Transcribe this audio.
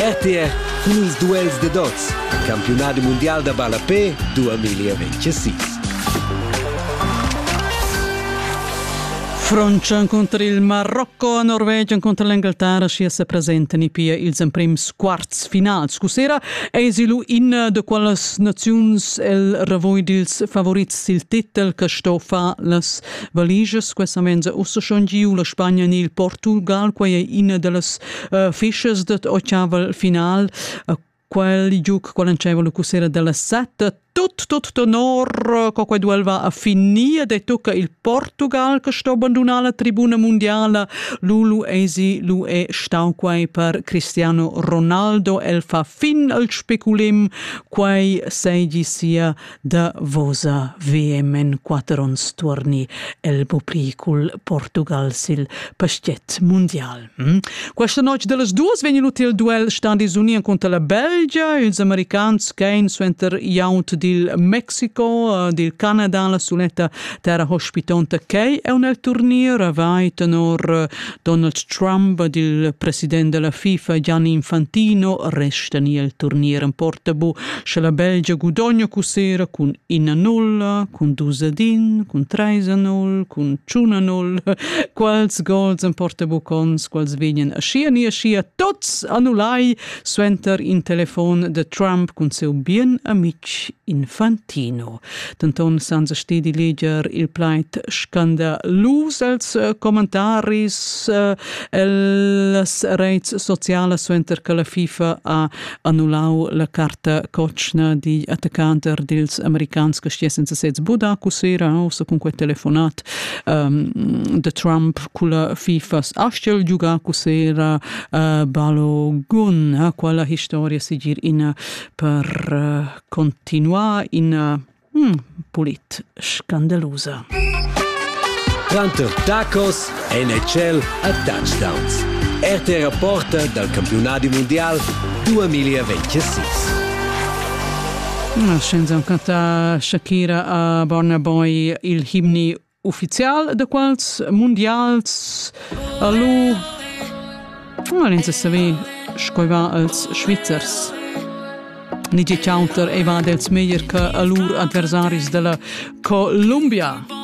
RTR cun ils duels da dots, campiunadi mundial da ballapé 2026. Francia incontra il Marocco, Norvegia incontra l'Inghilterra, sia se presentano pia ils emprims quarts finals. Scussera eis lu in da qualas naziuns el ravoi dils favorits sil titel che sto far las valigias quesamente ussa schon giu la Spagna ni il Portugal quei è ina dallas uh, fischas dat ochaval final uh, quel giuc qual anceva la cussera della setta tut tut honor co quei duel va a finir de tucca il Portugal che sto abbandonare la tribuna mondiale Lulu Esi lu è stau quei per Cristiano Ronaldo el fa fin al speculim quei seigi sia Davosa VM en quatter onns tuorni el popli cul Portugal sil paschiet mundial. Hm? Questa noc dellas duas vegn l'hotel duel standis uni cunter la Belgia, ils americans ch'ein suenter Yount dil Mexico, dil Canada, la suletta terra hospitonta ch'ei è un el turnier, vai tenor Donald Trump ed il president della FIFA Gianni Infantino restan il turnier en portabu, sche la Belgia gudogna cusera cun 1-0, cun 2-1, cun 3-0, cun 1-0, quals gols en portabu cons, quals vegnan aschia ni aschia tots annullai suenter in telefon de Trump cun seu bien amic Infantino. Tino. Denton senza stedi leger il plaid scandalus els eh, commentaris eh, las reits socialas suenter che la FIFA ha annullau la carta cocna di attaccanter dils americans che stiesen se sez Budaku sera aussa cun quei telefonat um, de Trump culla FIFA astel Jugaku sera uh, Balogun quella historia sigir ina per uh, continuar ina hmm, pulit scandalusa. Quanto tacos NHL a touchdowns. RTR Porta dal campionato mondial 2026. Scienza canta Shakira a Burna Boy il himni ufficial da quels mundials a lu non ins saver sco va als Svizzers ni che counter ei va dels meglier che a lur adversaris della Columbia